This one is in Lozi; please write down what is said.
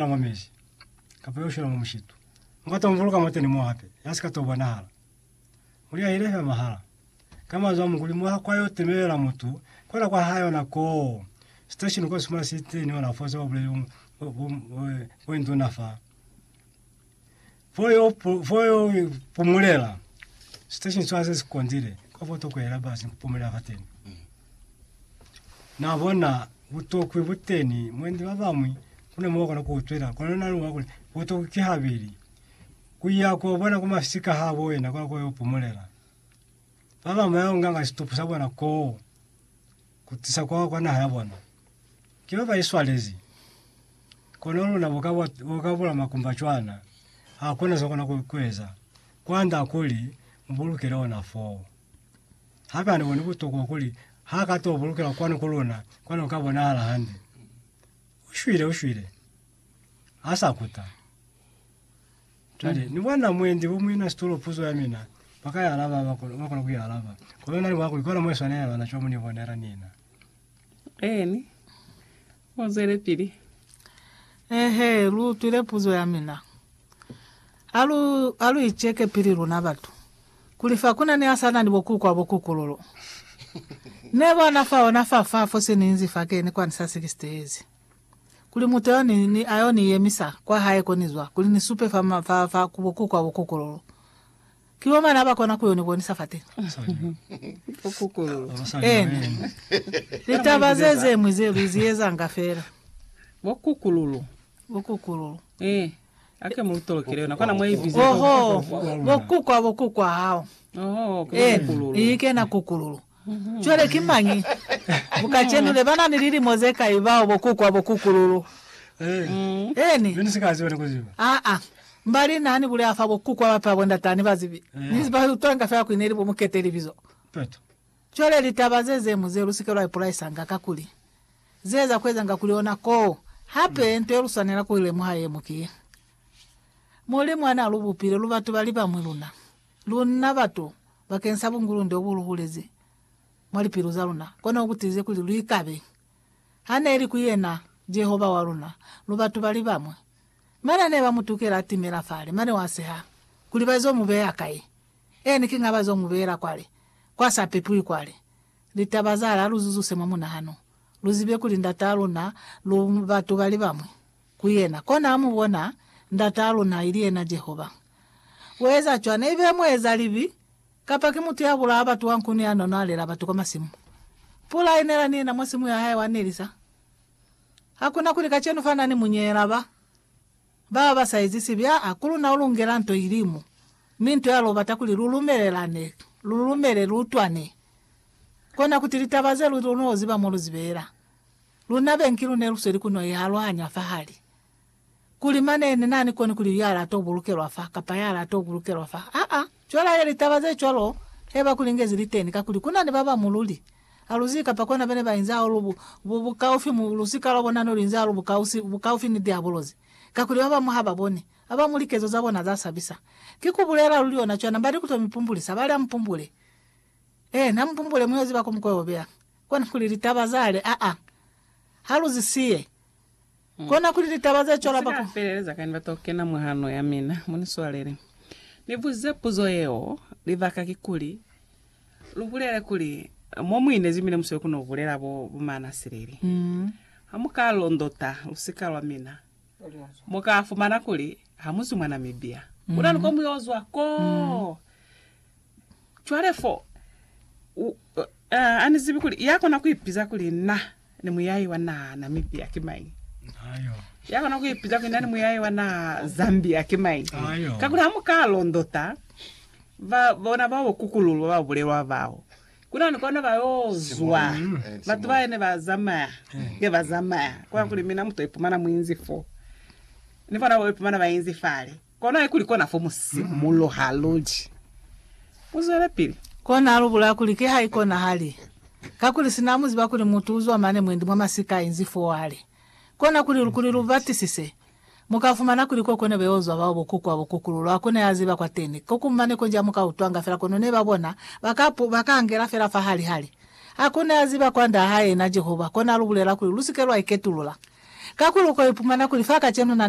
Na mwa mezi, kapa yo shwela mwa mushitu. Mu ka tombuluka mwateni mo hape, ya si ka to bonahala. Mu liahile fela mahala. Ka manzwi a Mukuli, mwa kwa yo temelela mutu, kwela kwa hae ona koo. Station uka sumana siteni ona fo se ba buleli bo, bo, bo, bo induna fa. Fo yo, fo yo pumulela. Station swa se sikondile. Kwa fo toko yela basi pumulela fateni. Mm. Na bona butokwi buteni mwendi ba bamwi kuna mo kona kuutwela kona na luwa kule butokwi ki habili kuya ko bona kuma fisika ha bo yena kwa ko yo pumulela. Ba bamwe yo nganga situpu sa bona ko. ku tisa kwa, kwa naha ya bona. Ki ba ba iswalezi. Kono luna boka bwa, boka bula makumba cwana, ha kona za kona ku, kueza. Kwanda kuli mubulukele ona foo. Hape ani boni butokwa kuli ha ka to bulukela kwanu ku luna, kwani uka bonahala hande. Ushwile, ushwile. Asa kuta. Cwale, ni bona mwendi o muina situlo puzo ya mina, ba ka i alaba, ba kona, ba kona ku i alaba. Kono na ni mwa kuli, kona mwa iswanelela na cwa mu ni bonela nina. Eeni. Mu zwelepili. Eehe, lu utwile puzo ya mina. Ha lu, ha lu iceke pili luna batu, kuli fa ku na ni asana ni bo kuku a bo kukululu. Ne bona fa ona fa, fa fo sininzi fa keni kwani sa 60 yezi. kuli muteo ni, ni ayo ni yemisa kwa hae ko ni zwa, kuli ni supe fa, ma, fa, fa ku bokuku a bokokololo. Ki bo mane aba kona kuyo ni bonisa fateni. Bokokololo. Ena. Litaba ze zemwi ze lu zi ezanga fela. Bokukululu. Bokukulolo. Eh. Ake mu lutolokele yona. Kona mwa ibize. Oho. Bokuku a bokuku a hao. Oho. Ke Eh, bokukululu. iyi kena kukululu. Cwale ki mañi mu kacenu ne ba na ni lilimo ze kai bao bo kukwa bo kukululu? Eeni. Aa. Mbali na ni bulela fa bo kukwa ba pe abo ndata ni ba zibi, ni ba utwanga fela kuli ne li bo mukete libizo. Cwale litaba ze ze mu ze lu si ke lwa ipolaisanga, kakuli ze za ku ezanga kuli ona koo. Hape, nto ye lu swanela ku i lemuha ye mu ki ye, Mulimu ha na lu bupile lu batu ba li bamwi luna Luna batu, bakeng sa bungulunde obu lu bulezi mwa lipilu za luna, kono bu tiize kuli lu ikabe. Ha ne li ku yena, Jehova wa luna, lu batu ba li bamwi. Mane ne ba mu tukela a timela fale, mane wa seha kuli ba zo mu beya kai. Eeni, kiña ba zo mu beela kwale, kwa sa pepiwi kwale. Litaba zale, ha lu zuzuse mwa munahano, lu zibe kuli Ndataa luna lu batu ba li bamwi. ku yena, kona mu bona Ndataa luna, ili yena Jehova. Ku eza cwana, ibe muezalibi kapa ki mutu ya bulaa batu wa nkuni ya nono a lela batu kwa masimu. Pula inela ni yena mwa simu ya hae wa nelisa. Ha ku na kuli kacenu fa na ni munyeela ba baba ba sa ezi sibi, aa, ku luna u lungela nto ili mo, mi nto ya lwo bata kuli lu lumelelane, lu lumele, lu utwane, kona kuti litaba ze lu noziba mo lu zi beela. Luna bengi lu ne lu sweli ku no i aluhanya fahali, kuli mane ne na ni koni kuli ya la to bulukelwa fa kapa ya la to bulukelwa fa. Aa, cwelale litaba ze cwalo he ba ku lingezi li teni, kakuli ku na ni ba ba mu luli a lu zibi kapa kona bene ba inzi hahulu bu, bu, bukaufi mu, lusika lwa bona ne lu inzi hahulu bukausi, bukaufi ni Diabolosi, kakuli ba bañwi ha ba boni, ba ba mu likezo za bona za sabisa. Ki ku bulela luli ona cwana, ba ni ku to mi pumbulisa, ba li, Amupumbule. Eena, amupumbule, mu yo ziba ko mu ko yo beya. Kona kuli litaba za le a a ha lu zi siye. Kona kuli litaba ze cwalo ba ku. Feleleza kañi ba to kena mwa hano ya mina? Mu ni swalele ni buze puzo yeo. Libaka kikuli, lu bulele kuli, mo mu inezi mina musweli ku no bulela bo, bo mana silili. Ha mu ka londota lusika lwa mina, mu ka fumana kuli ha mu zwi mwa Namibia. Kuna ni ko mu yo zwa koo. Cwale fo, u, uh, ani zibi kuli ya kona kuipiza kuli na ni muyayi wa na Namibia ki mañi. Ayo. Ya kona kuipiza kuli na ni muyayi wa na Zambia ki mañi. Ayo. Kakuli ha muka londota ba bona bao kukululwa ba bulelwa bao kuna ni kona ba yo zwa mm. batu ba ne ba zamaya mm. nge ba zamaya kwa kuli mina muto ipumana muinzi fo ni bona bo ipumana ba inzi fale Kona kuli kona fo mu simuloha luli. Mu zwelepili. Kona lu bulaya kuli ki ha ikonahali. Kakuli sina mu ziba kuli mutu uzwa mane mwendi mwa masika inzi fo wali. Kona kuli lu kuli lu batisise. Mu ka fumana kuli ko kone beo zwa bao bokuku wa bokuku lulu a kune a ziba kwateni. Ko ku mane konji a mu ka utwanga fela kono ne ba bona, ba ka pu, ba ka angela fela fa hali hali. A kune a ziba kwa Nda ha yena Jehova. Kona lu bulela kuli lu si ke lwa iketulula. Kakuli u ko ipumana kuli fa kacenu na ni.